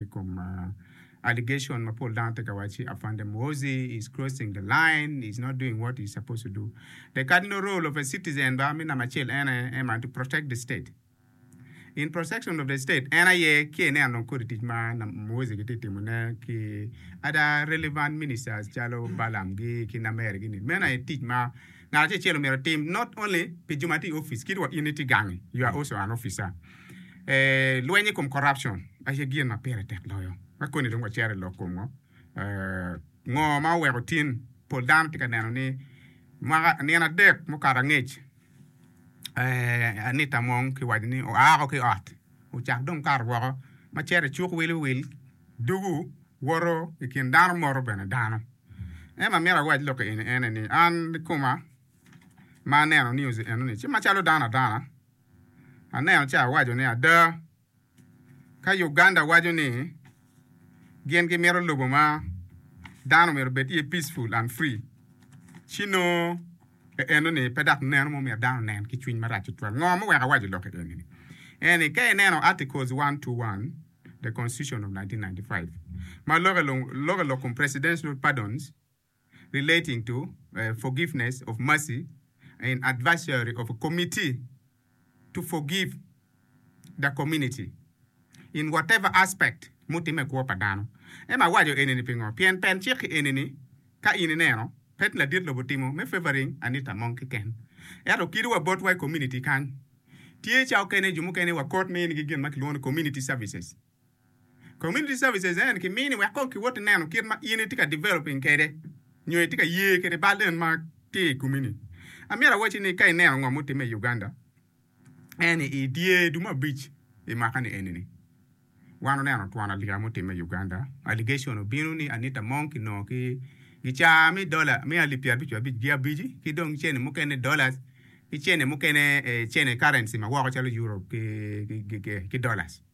I kom allegation ma pol dano tye ka waco ni Afande Muhoozi is crossing the line, is not doing what is supposed to do. The cardinal role of a citizen ba me namba acel en aye en man to protect the state. In protection of the state en aye ki ineno dong kodi tic ma Muhoozi gitye ka timo ne ki other relevant ministers calo Balaam gi ki Namer gi ni. Meno aye tic ma ngat acel acel omyero otim not only pi jo ma tye i office kit wa in itye gangi you are also an officer. Ee, lweny i kom corruption aye gin ma pire tek loyo. Ka koni dong wacito i lok kom ngo, ee, ngo ma oweko tin pol dano tye ka neno ni mwaka, nino adek mukato angec, ee, Anita Among kiwaco ni oa woko ki ot, ocako dong kato woko ma cito i cuk wil wi wil, dugu, woto i kin dano, moto bene dano. En ma myero awac lok-ki eni ene ni, an kikoma ma aneno news enoni ci macalo dano adana, Aneno ci awaco ni, Ada, ka Uganda waco ni gin gimito lobo ma dano myero obed iye peaceful and free, ci nongo enoni pe dok neno ma omyero dano onen ki cwiny marac tutwal. Ngo ma oweko awaco lok enini? En ni, ka ineno Articles one two one, the Constitution of nineteen ninety five, ma loko i lok kom presidential pardons, relating to forgiveness of mercy and advisory of a committee to forgive the community in whatever aspect mutimme i kwo pa dano. Ema awaco eni-ni pingo? Pien pen cik eni-ni, ka in ineno, pe ti ladit lobo timo me favouring anita mong kiken. Ento kidiwa botwa i community kany, tye ca okene jo mukene wa kot minigi gin ma kilwongo ni community services. Community services en kimini wek kong kiwot ineno kit ma in itye ka developing kwede nyo itye ka ye kwede bal en ma tye i komi ni. Amyero awacci ni ka ineno ngo mutime i Uganda en ni i dyer dumo abic i mwaka ni eni ni wan oneno twon alika mutime i Uganda, allegation obino ni Anita Among kinongo ki gicaa me dollar me alip pyerabic wa abic gi abici ki dong cene mukene dollars ki cene mukene cene currency ma woko calo Euro ki dollars.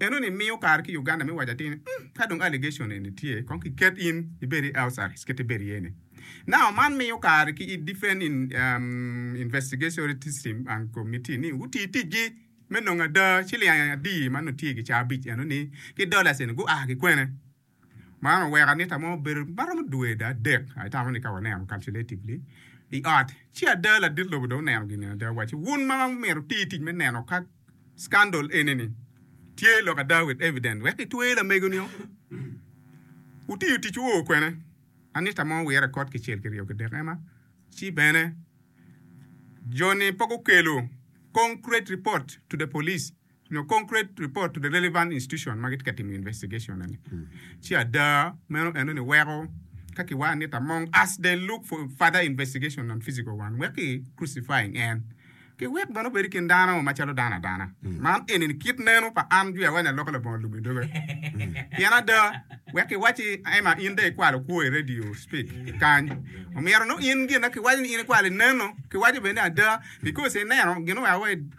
Eno ni miyo kare ki Uganda me waco atir ni umm ka dong allegation eni tye kong ki ket in ibed i house arrest kit ibed iye ni. Now man miyo kare ki i defend in umm investigatory system and committee ni guti tic gi me nongo ada ciling adii ma nongo tye gi ca abic eno ni ki dollars eni gua ki kwene. Man oweko anita mo obedo ma romo dwe adek I tamo ni ka waneno calculatively I ot ci ada ladit lobo dong oneno gin eni ada waco wun ma myero wuti tic me neno ka scandal eni ni tye lok ada with evidence wek itwer lamego nio wutiyo tic wu o kwene anita mo owire kot kicel kiryo kidek ema ci bene joni pe gukelo concrete report to the police. nyo concrete report to the relevant institution ma gitye ka timo investigation eni, ci ada meno enoni weko ka ki wano nit among us they look for further investigation on physical one wek ki crucifying en ki wek bene obedo i kin dano macalo dano adana. Man enini kit neno pa an Jwi Awanya Loko Labongo Lum Idoga. Pien ada, wek ki wacci Emma in dong ikwalo kwo i radio speak kany, omyero nongo in gin na ki waco ni in ikwalo ineno, ki waco bene ni ada because ineno gin oa wa i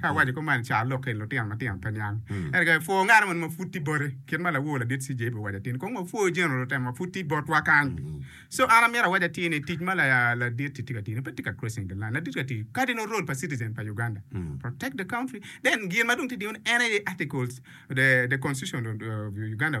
Ka awaco kop man i car lok-ki, lutino matino pe niang. Ento ka ipwo ngat mo ma pud tye boti, kit ma lawo ladit CJ obin owaco atir ni, Kong wapwo jeno lutemo ma pud tye botwa kany. So an amito awac atir ni tic ma ladit-ti tye ka tiyo-ni pe tye ka crossing the line. Ladit-ti ka tiyo cardinal role pa citizen pa Uganda, protect the country. Then gin ma dong tye ka tiyo ni en aye articles, the the constitution of Uganda.